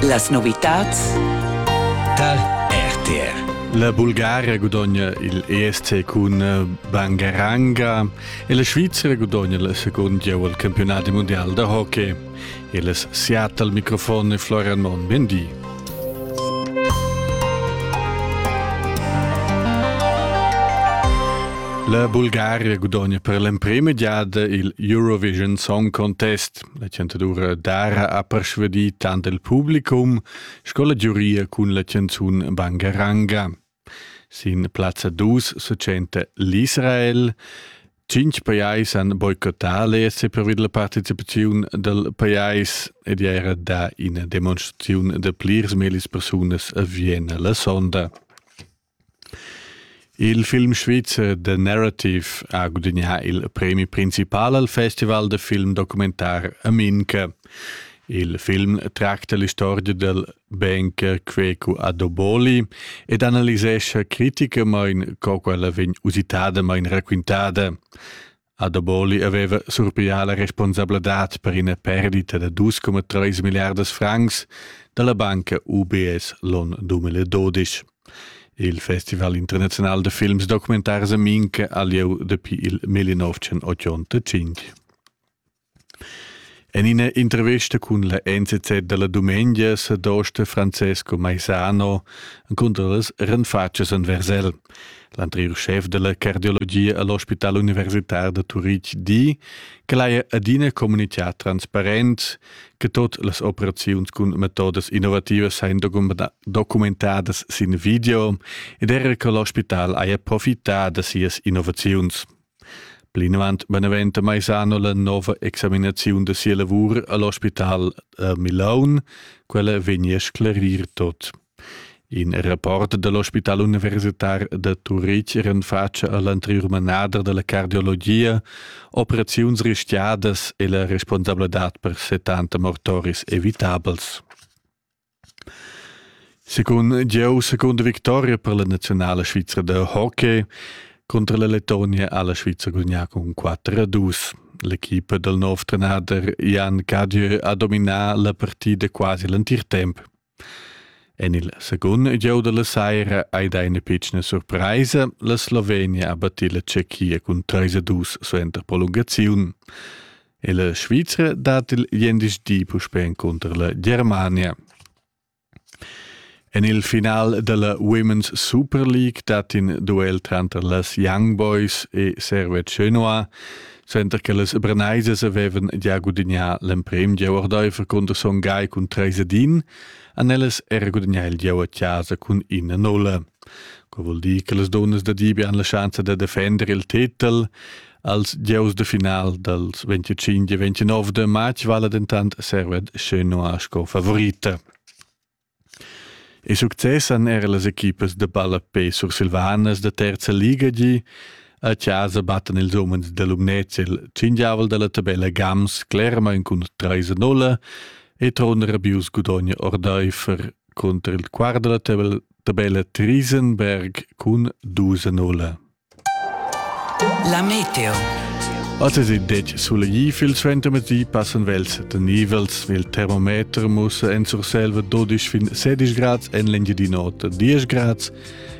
Las novitads tal RTR La Bulgaria gudogna il ESC cun eh, Bangaranga e la Svizzera gudogna il secund gieu al campionat mondial da hockey. Il es Seattle al microfon e Florian Mon. Bendi. La Bulgaria gudogna per l'emprema giada il Eurovision Song Contest. La chantadura Dara ha persvadì tant il publicum sco la giuria cun la chanzun Bangaranga. Sin plazza 2 se tschenta l'Israel. Cinc pajais han boicottà l'ESC pervi della partecipazione del pajais ed era da ina demonstrazione de plirs melis persunas a Vienna la sonda. Il film svizzer The Narrative ha gudagnà il premi principal al festival da film documentar a Minca. Il film tracta l'istorgia dal banker Quecu Adoboli ed analisescha criticamain co quella vegn usitadamain raquintada. Adaboli haveva surpiglià la responsabladad per ina perdita da dus coma treis milliardas francs dalla banca UBS l'onn 2012. Il Festival internazional da films documentars a Minca ha lieu dapi il 1985. En ina intervesta cun la NZZ dalla dumengia sa dosta Francesco Maisano encunter las renfatschas en Versel. L'anteriur schef della cardiologia all'Ospital Universitar da Turitg di che l'haja adina comunicà transparent che tot las operaziuns cun metodas innovativas sain documentadas sin video ed era che l'ospital haja profità da sias innovaziuns. Plinavant beneventa Maisano la nova examinaziun da sia lavur all'ospital a Milaun. Quella vegnia a sclarir tot. In rapport dall'ospital universitar da Turitg renfatscha all'anteriur manader dalla cardiologia operaziuns rischiadas e la responsabladad per 70 mortoris evitabels. Secund jeu secunda victoria per la naziunala svizra da hockey cunter la Lettonia ha la Svizra gudagnà cun 4 a 2. L'equipa dal nov trenader Jan Cadieu ha dominà la partida quasi l'entir temp. En il secund gieu dalla saira hai dà ina pitschna surpraisa. La Slovenia ha battì la Tschechia cun 3 a 2 suenter prolungaziun. La Svizra dat il gliendisdi puspè encunter la Germania. En il final della Women's Super League dat in duel tranter las Young Boys e Servet Chenoa, center che las Branaisas avevan già gudagnà l'emprim gieu ordaifer cunter Son Gai cun 3 a 1, han ellas er gudagnà il gieu a casa cun 1-0. Quel vuol dir che las dunnas da Dibi han la schanza da defender il titel als gieus de final dals 25 e 29 de matg vala dentant Served Chenoa sco favorita. E success han era las equipas de balla P sursilvanas de terza liga gi. A casa battan ils umens de Lumnez il cindiavel della tabella Gams Clerma cun 3-0 e Tron Rabius Gudogne Ordeifer contro il quart della tabella Triesenberg cun 2-0. La meteo. Otter in detg sulegli fil suentermedi passan vels de nivels il termometer mussa en Surselva 12 fin 16 grads en l'Engiadinota 10 grads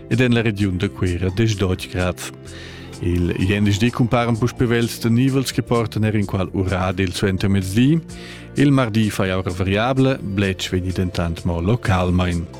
ed en la regiun de Cuira 10 grads. Il jendisch cumparen puspe vels de nivels che portan er in qual urad il suentermezdi. Il mardi fai aura variabile, bletsch vegni dentant mo localmain.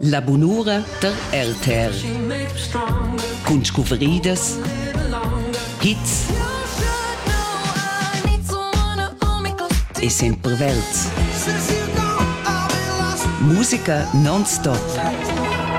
La bunura der Elther cun scuvridas, hits e sempre Welt. Musica non-stop.